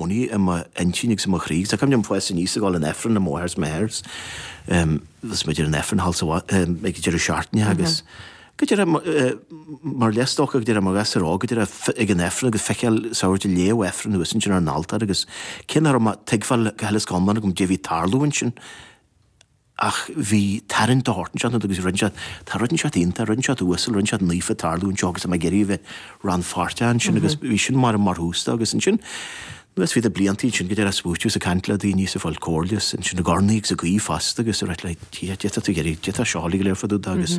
gcónaí i m'intinn agus i mo chroí. Agus tá cuimhne agam ag fás aníos ag gabháil chun Aifrinn le m'athair is mo mháthair is bhíodh muid ar an Aifreann thall sa ag an deireadh seachtaine agus go dearfa mar is dócha go dearfa mar ghasúr óg go dearfa ag an Aifreann agus feiceáil sagart ag léamh Aifrinn thuas ansin ar an altóir agus cé nach raibh mé ag tuigbheáil go huile is go hiomlán cad é a bhí ag tarlú ansin Ach bhí tarraingt de shórt anseo agus rinne sé, tá rud anseo iontach, rud anseo uasal, rud anseo naofa ag tarlú anseo agus tá mé ag iarraidh a bheith rannpháirteach ansin agus bhí sin mar an mar thús dó agus ansin anuas fríd na blianta ansin go dearfa ag smaoitiú is ag caint le daoine is ag fáil comhairle is ansin ag urnaí agus ag guí fosta agus a rá, d'fhéadfadh tú, d'fhéadfadh tú go léir fadú do agus.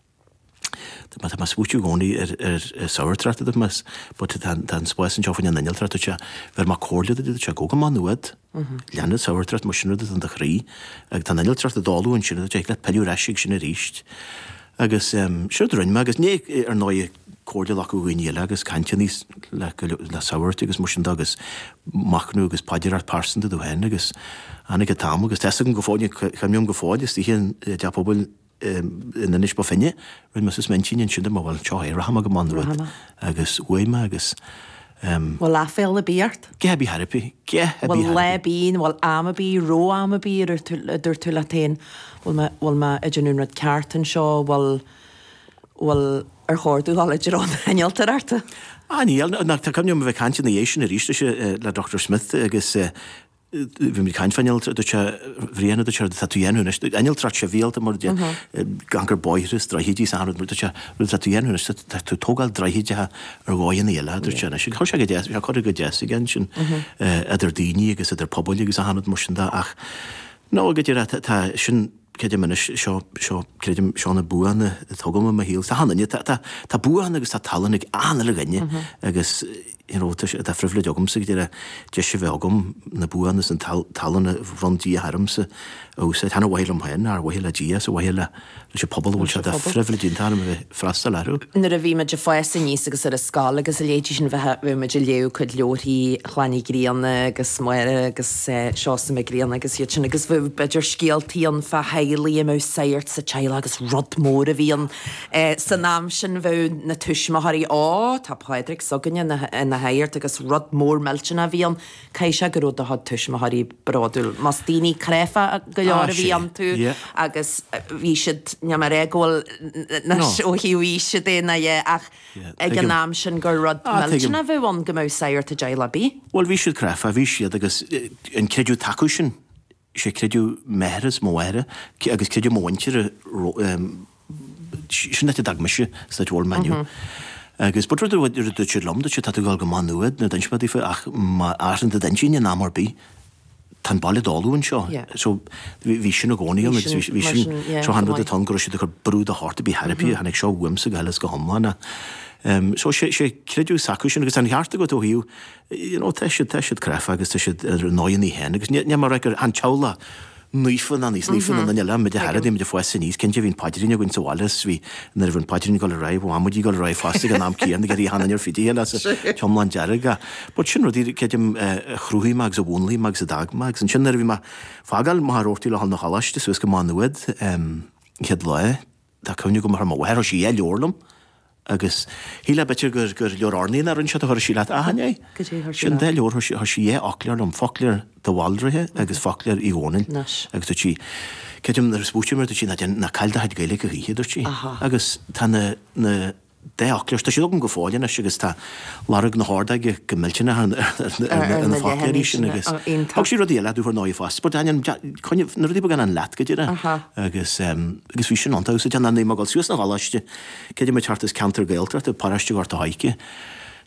Tá mé ag smaoitiú i gcónaí ar an tsagartóireacht de mhas, but tá an spás anseo faoin an innealtóireacht, dúirt sé, bheir mé comhairle duit, dúirt sé gabh go Má Nuad, lean an tsagartóireacht más sin rud atá in do chroí agus tá an innealtóireacht i gcónaí ansin, thig leat pilleadh ar ais ag sin aríst. Agus siúd a rinne mé agus ní, ar ndóigh, comhairle ghlacadh ó dhaoine eile agus caint aríst le go leor, le sagairt agus mar sin de agus machnamh agus paidreacha pearsanta tú féin agus tháinig an t-am agus tá fhios agam go fóill, cuimhním go fóill, istigh i dTeach Pobail na. in Inis Bó Finne, rinne mé suas m'intinn ansin go mba, bhuel, seo é, rachaidh mé go Maigh Nuad. Agus chuaigh mé agus em. Bhfuil aiféala ar bith ort? Ge a bhí thart faoi, ge a bhí thart faoi. Bhuel, lá ar bith, bhfuil am ar bith, raibh am ar bith, a dúirt tú leat féin, bhfuil mé, bhfuil mé ag déanamh an rud ceart anseo, bhuel, bhuel, ar chóir domh dhul i dtreo an innealtóireacht? Á, níl, ná, tá cuimhne agam a bheith ag caint ina dhiaidh sin aríst, is é, le Doctor Smith agus eh, bhí mé ag caint fán innealtóireacht, dúirt sé, Bhrian a dúirt sé rud atá tú a dhéanamh anois, innealtóireacht sibhialta mar a déarfá, ag cur bóithre is droichid is achan rud, dúirt sé, rud atá tú a dhéanamh anois, tá tú ag tógáil droichid a ar dhóigheannaí eile, a dúirt sé anois. Agus chuir sé go deas, bhí sé curtha go deas aige ansin, idir daoiní agus idir pobail agus achan rud mar sin de ach, no, go dearfa, tá, tá, sin, creidim anois, seo, seo, creidim, seo na buanna a tugadh domh i mo shaol. Is achan duine, tá, tá, tá buanna agus tá tallann ag achan uile dhuine agus, you know, tá sé, de phribhléid agamsa go dearfa deis a bheith agam na buanna is an tallann a bhronn Dia ormsa a úsáid, chan ar mhaithe liom féin, ach ar mhaithe le Dia is ar mhaithe leis an pobal a bhfuil sé de phribhléid iontach orm a bheith. freastal orthu. Nuair a bhí muid ag fás aníos agus ar an scoil agus a leithéidí sin, bheadh, bheadh muid ag léamh cuid leabharthaí Chlann Uí Ghrianna agus Máire agus Seosamh Mac Grianna agus iad sin agus bheadh b'fhéidir scéaltaí ann fá theaghlaigh a mbeadh sagart sa teaghlach agus rud mór a bhí ann san am sin, bheadh na tuismitheoirí, Ó, tá Pádraig s'againne ina, ina shagart agus rud mór millteanach a bhí ann. Caithfidh sé go raibh do chuid tuismitheoirí bródúil más daoine cráifeacha go leor a bhí iontu agus bhí siad, níl mé ag rá go bhfuil, anois ó thaobh aoise de nó a dhath ach ag an am sin gur rud millteanach a bheadh ann go mbeadh sagart i dteaghlach ar bith. Bhuel, bhí siad cráifeach, bhí siad agus an creideamh acu sin Is é creideamh m'athara is mo mháthara agus creideamh mo mhuintire sin áit a d'fhág mise san áit a bhfuil mé inniu. Agus but rud a dúirt siad liom, dúirt siad tá tú ag dul go Má Nuad, nuair a d'inis mé daofa ach má athraíonn tú d'intinn in am ar bith, tá an baile i dtólamh anseo. So bhí sin i gcónaí ann agus bhí sin, chan rud atá ann go raibh siad ag cur brú de shórt ar bith, ar bith, tháinig seo uaimse go huile is go hiomlán é. So is é creideamh s'acu sin agus tá an ceart agat ó thaobh you know tá siad, tá siad cráifeach agus tá siad ar a ndóigheannaí féin agus níl, níl mé a rá gur chan teaghlach naofa ná níos naofa ná duine eile, muid ach nuair a bhí muid a' fás aníos, cinnte bhí an paidrín againn sa bhaile is bhí, nuair a bhí an paidrín ag dul ar aghaidh, bhí an amaidí ag dul ar aghaidh fosta ag an am céanna, ag iarraidh a hanam ar fid a dhéanamh as a, hiomlán dearg a. But sin rudaí a, creidim a chruthaigh mé agus a mhúnlaigh mé agus a d'fhág mé agus ansin nuair a bhí mé ag fágáil Machaire Rabhartaigh le dhul 'na choláiste suas go Má Nuad, an chéad lá, Tá cuimhne agam ar mo mháthair, chuir sí dhá leabhar liom agus shílfeá b'fhéidir gur leabhar urnaí ná rud inteacht a chuir sí leat, ach chan é. Sin an dá leabhar, chuir sí dhá fhoclóir liom, foclóir de Bhaldraithe agus foclóir Uí Dhónaill agus dúirt sí, creidim nuair a smaoitím air, dúirt sí ná déan, ná caill do chuid Gaeilge a choíche, dúirt sí agus tá na, na, dá fhoclóir. Tá siad agam go fóill anois agus tá lorg na hordóige go millteanach ar na foclóirí sin agus thug sí rudaí eile domh ar ndóigh fosta but deineann na rudaí beaga sin leat go dtí rá agus bhí sin iontach agus deineann mé ag gabháil suas 'na choláiste cé dé muid thart is ceantar Gaeltachta, paróiste Ghort a' Choirce,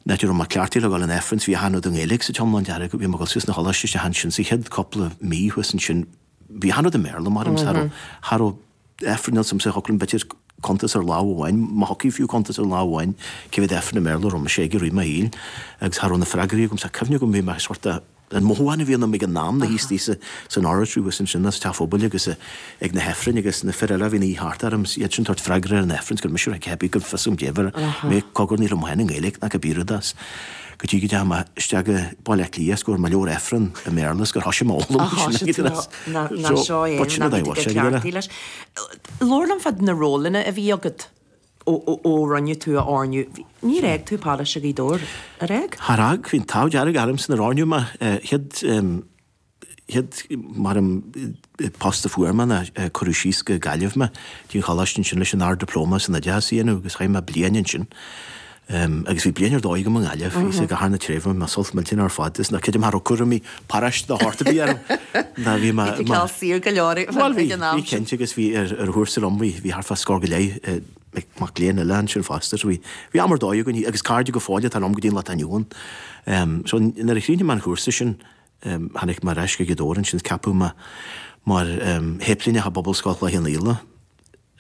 a raibh mé cleachtaithe le dhul 'un Aifrinn so bhí achan rud i nGaeilge sa t-iomlán dearg, bhí mé ag gabháil suas 'na choláiste ansin sa chéad cúpla mí thuas ansin. Bhí achan rud i mBéarla, mar aimsir, cha raibh Aifreann ann, so thiocfadh b'fhéidir cuntas ar lámh amháin, má thiocfadh fiú cuntas ar lámh amháin, cé mhéad Aifreann i mBéarla a raibh mise aige i rith mo shaoil, agus cha raibh na freagraí agam, so tá cuimhne agam bhí mé sort de, an mothú amháin a bhí ionam ag an am, ná istigh san oratory agus ansin sa teach phobail agus ag na hAifrinn agus na fir eile a bhí ina suí thart orm, iad sin ag tabhairt freagra ar an Aifreann, so gur mise a raibh ag teipéadh, cha raibh a fhios agam caidé, bhí mé ag cogarnaíl amuigh ann i nGaeilge ach a bpíoraid as. go dtí go dteachaidh mé isteach i Baile Átha Cliath is go bhfuair mé leabhar Aifrinn i mBéarla is gur thoisigh mé a fhoghlaim Ach thoisigh tú ná seo é, ná bhí tú ag cleachtadh leis. Labhair liom fá na rólanna a bhí agat ó rinneadh tú a oirniú. Níor fhág tú Paráiste Ghaoth Dobhair, ar fhág? Char fhág, bhí an t-ádh dearg ormsa nuair a oirníodh mé, chéad chéad mar an post a fuair mé ná cuireadh síos go Gaillimh mé go dtí an choláiste ansin leis an Ard-Dioplóma san Oideachas a dhéanamh agus chaith mé bliain ansin agus bhí bliain ar dóigh agam i nGaillimh, bhí sé go thar na tréimhse, bhain mé sult millteanach ar fad as, creidim nach raibh cúraimí paráiste de shórt ar bith orm ná bhí mé, bhí mé saor go leor ag an am sin. Cinnte agus bhí ar thabhairt ar fhonn, bhí thart fá scór go leith mac léinn eile ansin fosta so bhí, bhí am ar dóigh againn agus cairde go fóill atá liom go dtí an lá atá inniu ann. So nuair a chríochnaigh mé an cúrsa sin, Tháinig mé ar ais go Gaoth Dobhair ansin, ceapadh mé mar shéiplíneach i bPobalscoil Chloich Cheann Fhaola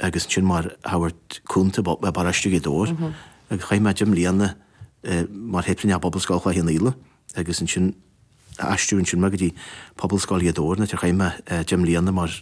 agus ansin mar shagart cúnta i bParóiste Ghaoth Dobhair agus chaith mé deich mbliana mar shéiplíneach i bPobalscoil Chloich Cheann Fhaola agus ansin aistríodh ansin mé go dtí Pobalscoil Ghaoth Dobhair an áit ar chaith mé deich mbliana mar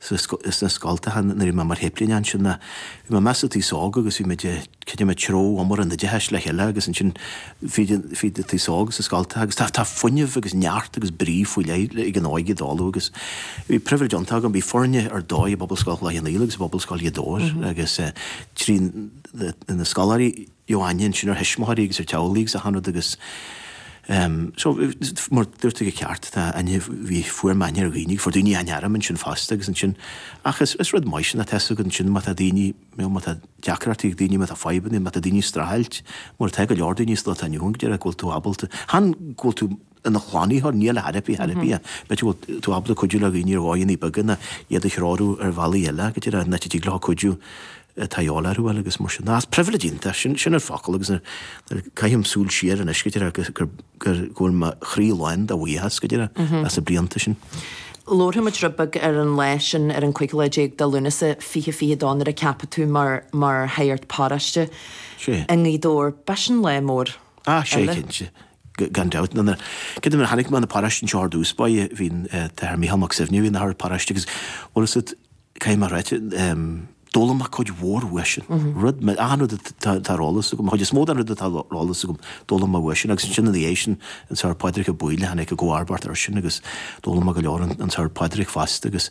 sna scoltacha nuair a bhí mé mar shéiplíneach ansin ná, bhí mé i measc an t-aos óg agus bhí muid, creidim, ag treabhadh iomaire an oideachais le chéile agus ansin bhí an t-aos óg sna scoltacha agus tá fuinneamh agus neart agus brí faoi leith ag an óige i dtólamh agus bhí pribhléid iontach agam, bhí foirne ar dóigh i bPobalscoil Chloich Cheann Fhaola agus i bPobalscoil Ghaoth Dobhair agus trí na scoláirí. aithne ansin ar thuismitheoirí agus ar theaghlaigh agus achan rud agus so mar dúirt tú go ceart tá aithne bhí fuair mé aithne ar dhaoine agus fuair daoine aithne orm ansin fosta agus ansin ach is is rud maith sin tá a fhios agat ansin má tá daoine nó má tá deacrachtaí ag daoine má tá fadhbanna má tá daoine ag streachailt mar tá go leor daoine sa lá atá inniu ann go díreach go bhfuil tú ábalta chan go bhfuil tú ina shlánaitheoir, nó ina theiripí, therapy, ann, b'fhéidir go bhfuil tú ábalta cuidiú le daoine ar dhóigheannaí beaga nó iad a threorú ar bhealaí eile agus ar áit a dtig leo cuidiú atá a dhíobháil orthu a fháil agus mar sin de is pribhléid iontach, sin, sin an focal agus nuair, nuair a chaithim súil siar anois go díreach agus gur, gur, go bhfuil mo chroí lán de bhuíochas go díreach as na blianta sin. labharfaimid rud beag ar an lá sin ar an 15 lá de Lúnasa 2022 nuair a ceapadh tú mar, mar Shagart Paróiste Sé. i nGaoth Dobhair. B'shin lá mór. Ah, Sé, cinnte. Gan dabht, nuair a, creidim, nuair a tháinig mé 'na paróiste anseo ar dtús, ba é, bhí an tAthair Mícheál Mac Suibhne a bhí 'na Shagart Paróiste agus, bhuel is it, caithfidh mé a ráit, d'fhoghlaim mé cuid mhór uaidhsean. Rud, achan rud atá ar eolas agam, an chuid is mó den rud atá ar eolas agam, d'fhoghlaim mé uaidhsean agus ansin ina dhiaidh sin, an Sagart Pádraig Ó Baoighill a tháinig i gcomharbacht airsean agus d'fhoghlaim mé go leor ón Sagart Pádraig fosta agus,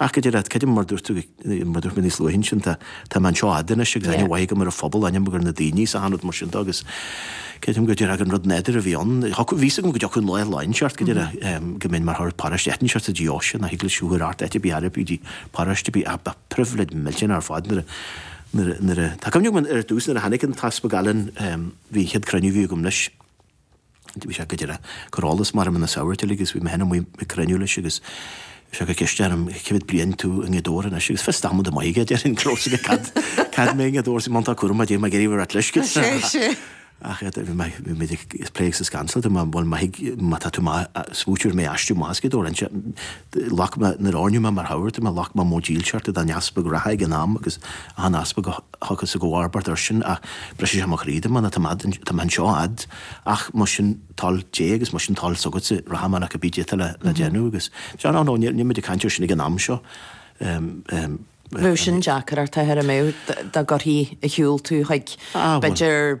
Ach go díreach, creidim, mar dúirt tú, mar dúirt mé níos luaithe ansin, tá, tá mé anseo a fhad anois agus aithne mhaith agam ar an phobal, aithne agam ar na daoine is achan rud mar sin de agus creidim go díreach gur rud nádúrtha a bhí ann. Thiocfadh, bhí's agam go dtiocfadh an lá lá inteacht, go díreach, em, go mbeinn mar shagart paróiste áit inteacht sa deoise, nach eaglais a thabharfadh ort áit ar bith arb í paróiste ar bith ach ba phribhléid millteanach ar fad nuair a, nuair a, nuair a, tá cuimhne agam ar dtús nuair a tháinig an tEaspag Alan, em, bhí an chéad chruinniú a bhí agam leis, Bhí sé go díreach ag cur eolas maith ar na sagairt uilig agus bhí mé féin amuigh ag cruinniú leis agus chuir sé ceist orm cé mhéad bliain atá tú i nGaoth Dobhair anois agus fios damanta maith aige a déarfainn go raibh aige cá fhad cá fhad mé i nGaoth Dobhair sa mBun Tá cúram fá Dé má gceirím ar ait leis go sé sé ach iad bhí mé bhí mé ag plé sa scansalta má bhfuil maith má tá tú ag smaoitiú ar mé a aistriú amach as Gaoth Dobhair anse Ghlac mé, nuair a oirníodh mé mar Shagart, mé ghlac mé móid dílseachta don Easpag reatha ag an am agus achan Easpag a thiocfas i gcomharbacht airsean ach brisfidh sé mo chroí dá mbeinn, tá mé anseo a fhad, ach más sin toil Dé agus más sin toil s'agatsa, rachaidh mé ach cibé caidé atá le déanamh agus deir, á no, níl muid ag caint air sin ag an am seo. Bheadh sin deacair ort a thuairimiú dá gcuirfí ar shiúl thú chuig, b'fhéidir,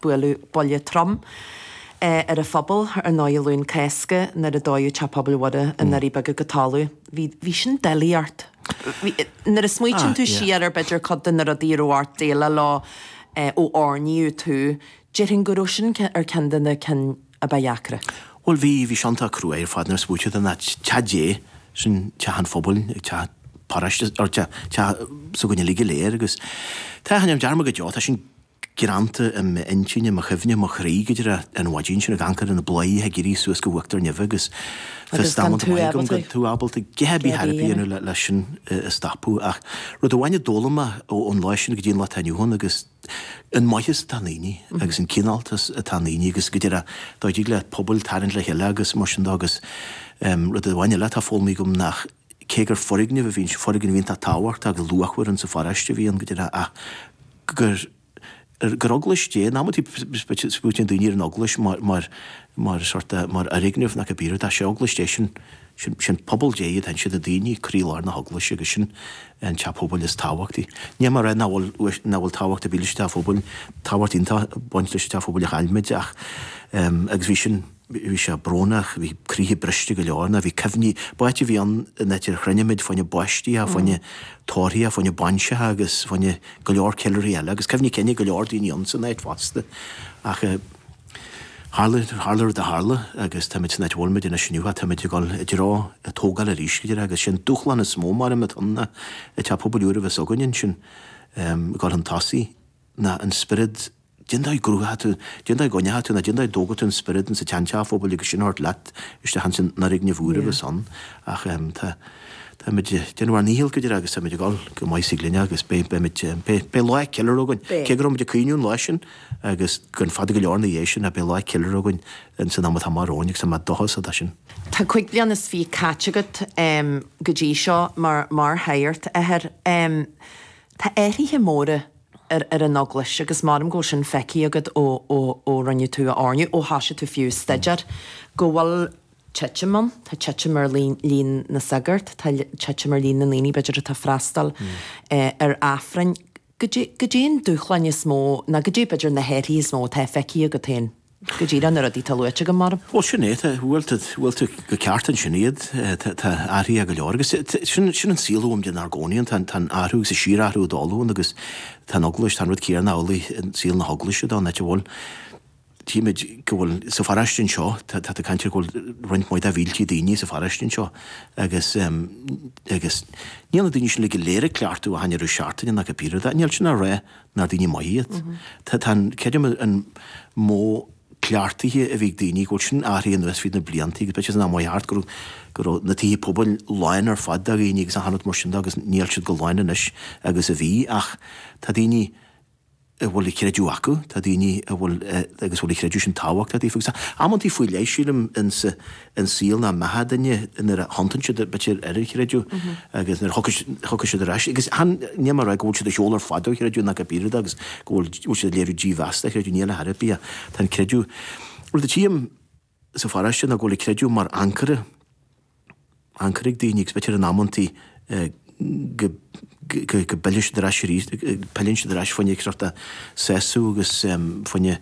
Buaileadh buille trom ar an phobal ar ndóigh Luan Cásca nuair a dóadh Teach Pobail Mhuire i nDoirí Beaga go talamh. Bhí sin doiligh ort. Nuair a smaoitíonn tú siar ar b'fhéidir cuid de na rudaí a raibh ort déileáil leo ó oirníodh tú, déarfainn go raibh sin ar ceann de na cinn a ba dheacra. Bhuel bhí, bhí sé iontach cruaidh ar fad nuair a smaoitíonn tú ná teach Dé, sin teach an phobail, teach paráiste, teach s'againne uilig go léir agus tá, tá, níl dearmad go deo, tá sin, greanta i m'intinn, i mo chuimhne, i mo chroí go díreach an mhaidin sin, ag amharc ar na bladhairí, ag éirí suas go uachtar neimhe agus fios damanta maith agam gan tú ábalta a dhath ar bith a dhéanamh le sin a stopadh. Ach rud amháin a d'fhoghlaim mé ón lá sin go dtí an lá atá inniu ann ná an maitheas atá i ndaoine agus an cineáltas atá i ndaoine agus go díreach go dtig le pobal tarraingt le chéile agus mar sin de agus rud amháin eile atá foghlamtha agam nach cé gur foirgneamh a bhí anseo, foirgneamh iontach tábhachtach agus luachmhar in sa pharóiste a bhí ann, go deimhin, ach gur, gur eaglais Dé, in amannaí smaoitíonn daoine ar an eaglais mar, mar, mar sórt a, mar fhoirgneamh ná go bhfuil, tá, sé eaglais Dé sin, sin, sin pobal Dé, sin na daoine, croílár na heaglaise agus sin an teach pobail is tábhachtaí. Ní hé rud nach bhfuil, nach bhfuil tábhacht ar bith leis an teach phobail, tá tábhacht iontach ag baint leis an teach phobail a chaill muid ach, agus bhí sin, bhí sé brónach, bhí croíthe briste go leor, ná bhí cuimhní, b'áit a bhí ann in áit ar chruinnigh muid fá choinne baistí, fá choinne tórraimh, fá choinne bainiseacha agus fá choinne go leor ceiliúrthaí eile, agus cuimhní cinn ag go leor daoine ann san áit fosta. Ach tharla, tharla an rud a tharla agus táimid san áit a bhfuil muid anois inniu, táimid ag dul i dtreo a tógála arís, go díreach, agus sé'n dúshlán is mó, maram, atá ann ná, an teach pobail úr, beidh sé againn ansin, ag dul chun tosaigh. ná an spiorad, dén dóigh a gcruthaíonn tú, dén dóigh a gcoinníonn tú, nó dén dóigh a dtógann tú an spiorad insa tseanteach phobail agus sin a thabhairt leat isteach insan fhoirgneamh úr a bheas ann. Ach tá, táimid ag déanamh ár ndícheall, go deimhin, agus táimid ag dul go maith ina ghlaine agus beidh, beimid, beidh, beidh lá ceiliúrtha againn. Cé go raibh muid ag caoineadh an lá sin agus go fada go leor ina dhiaidh sin ach beidh lá ceiliúrtha againn insan am atá amach romhainn agus tá mé i ndóchas as sin. Tá cúig bliana is fiche caite agat go dtí seo mar, mar shagart, a Athair. Tá athruithe móra ar ar an Eaglais agus maram go bhfuil sin feicthe agat ó rinneadh tú a oirniú, ó thosaigh tú fiú ag staidéar, go bhfuil titim ann, tá titim ar líon na sagart, tá titim ar líon na ndaoine b'fhéidir atá ag freastal ar Aifrinn. Goidé an dúshlán is mó, nó goidé b'fhéidir na hathruithe is mó atá feicthe agat féin? go díreach na rudaí atá luaite agam maram. Bhuel, sin é, tá, bhuel, tá, bhuel, tá tú ceart ansin, tá, tá athruithe go leor agus sin, sin an saol a bhfuil muid inár gcónaí ann, tá, tá an t-athrú agus an síorathrú ag dul ann agus tá an Eaglais, tá an rud céanna amhlaidh i saol na hEaglaise dá n-áit a bhfuil, tímid go bhfuil, sa pharáiste anseo, tá, tá tú ag caint ar go bhfuil roinnt mhaith de mhílte daoine sa pharáiste anseo agus, agus níl na daoine sin uilig go léir ag cleachtadh achan deireadh seachtaine agus níl sin á rá ná daoine maithe iad. Tá an, creidim, an modh cleachtaithe a bhí ag daoine go bhfuil sin athraithe anuas fríd na blianta agus b'fhéidir san am a chuaigh thart go raibh, go raibh na tithe pobail lán ar fad de dhaoine agus achan rud mar sin de agus níl siad chomh lán anois agus a bhí ach tá daoine a bhfuil an creideamh acu, tá daoine a bhfuil, agus a bhfuil an creideamh sin tábhachtach daofa agus tá amantaí faoi leith sílim ins an saol nó i mbeatha an duine nuair a thiontaíonn siad b'fhéidir ar an chreideamh agus nuair a thiocfaidh siad ar ais agus chan níl mé ag rá go bhfuil siad ar shiúl ar fad ón chreideamh ná go bpian agus go bhfuil bhfuil siad ag léiriú dímheas don chreideamh níl ar chor ar bith tá an creideamh rud a tchím sa pharáiste ná go bhfuil an creideamh mar ancaire ancaire ag daoine agus b'fhéidir in amantaí go bpilleann siad ar ais arís, pilleann siad ar ais faoina gcearta seasamh agus faoina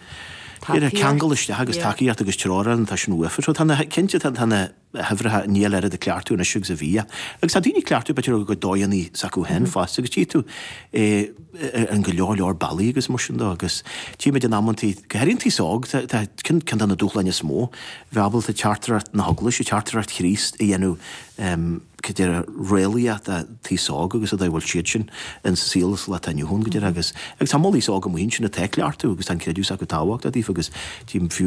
ceangal isteach agus tacaíocht agus treoir ann, tá sin uafa. So tá na, cinnte tá na huimhreacha níl oiread ag cleachtadh anois agus a bhíodh. Agus tá daoine ag cleachtadh b'fhéidir a gcuid dóigheannaí s'acu féin fosta agus tchí tú é in go leor leor bealaí agus mar sin de agus tchímid in amantaí, go háirithe an t-aos óg, tá ceann de na dúshláin is mó, bheith ábalta teachtaireacht na hEaglaise, teachtaireacht Chríost a dhéanamh, go díreach, réalaíoch don aos óg agus an áit a bhfuil siadsan ins an saol sa lá atá inniu ann go díreach agus agus tá moll aos óg amuigh ansin atá ag cleachtadh agus tá an creideamh s'acu tábhachtach daofa agus díobh fiú.